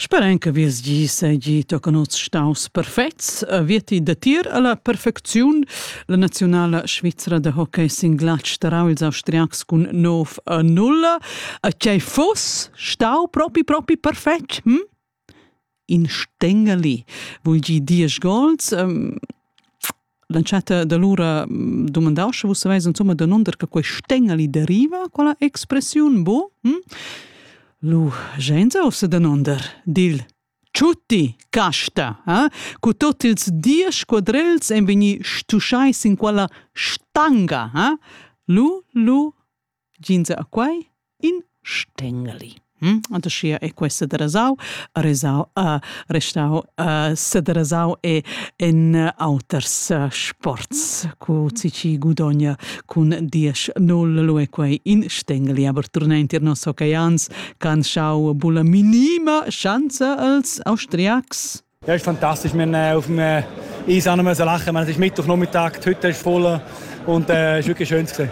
Sperain che Vies gi seigi tochen oz staus perfets. Vieti datir alla perfecziun la nazionala svizra da hockey sin glatsch tarau ils austriacs cun 9 a 0. A tgei fuss stau propi propi perfetg? Hm? in stengali vul gi diesch gols l'entschatta da lura dumandau sche vus saveis insomma danunder che quei stengali deriva quella expressiun bo hm? lu genza o se danunder dil Tutti casta, eh? cu tot ils diesch quadrels en vegni stuschai sin quella stanga, eh? Lu, lu, Ginza a quai in stengeli. Hm? Antoschia è questa derasau, resau, uh, restau, uh, sederasau e en auters uh, sports cu cici gudogna cun 10-0 lue quei in stengeli aber turna intir nos oceans can schau bulla minima schanza als Austriacs. Ja, ist fantastisch. Wir haben auf dem äh, Eis auch noch lachen, wir haben sich Mittwoch Nachmittag, die Hütte ist voll und äh, es war wirklich schön. Gewesen.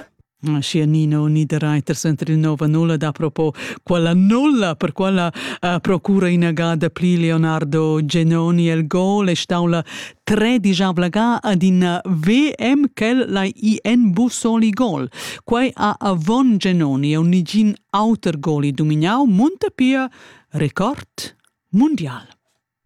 Sia Nino Niederreiters enter il nova nulla da propo quella nulla per quella uh, procura inagada pli Leonardo Genoni el gol e staula tre dijabla ga ad in VM quel la IN Bussoli gol. Quai a Avon Genoni e un nigin auter goli dominau munta pia record mundial.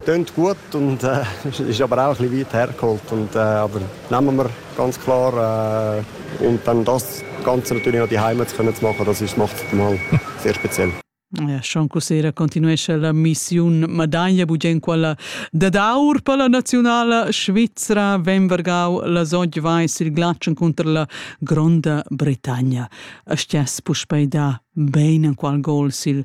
Tönt gut und äh, ist aber auch ein bisschen weit hergeholt. Und, äh, aber nehmen wir ganz klar. Äh, und dann das Ganze natürlich noch die Heimat zu können zu machen, das ist, macht mal sehr speziell. Eh, schon cosera continuesce la missiun Madaglia bugen quella dad aur per la nazionala svizra ven vargau la sogg vais il glatschen cunter la Gronda Bretagna. Stiess puspei da bein en qual gol sil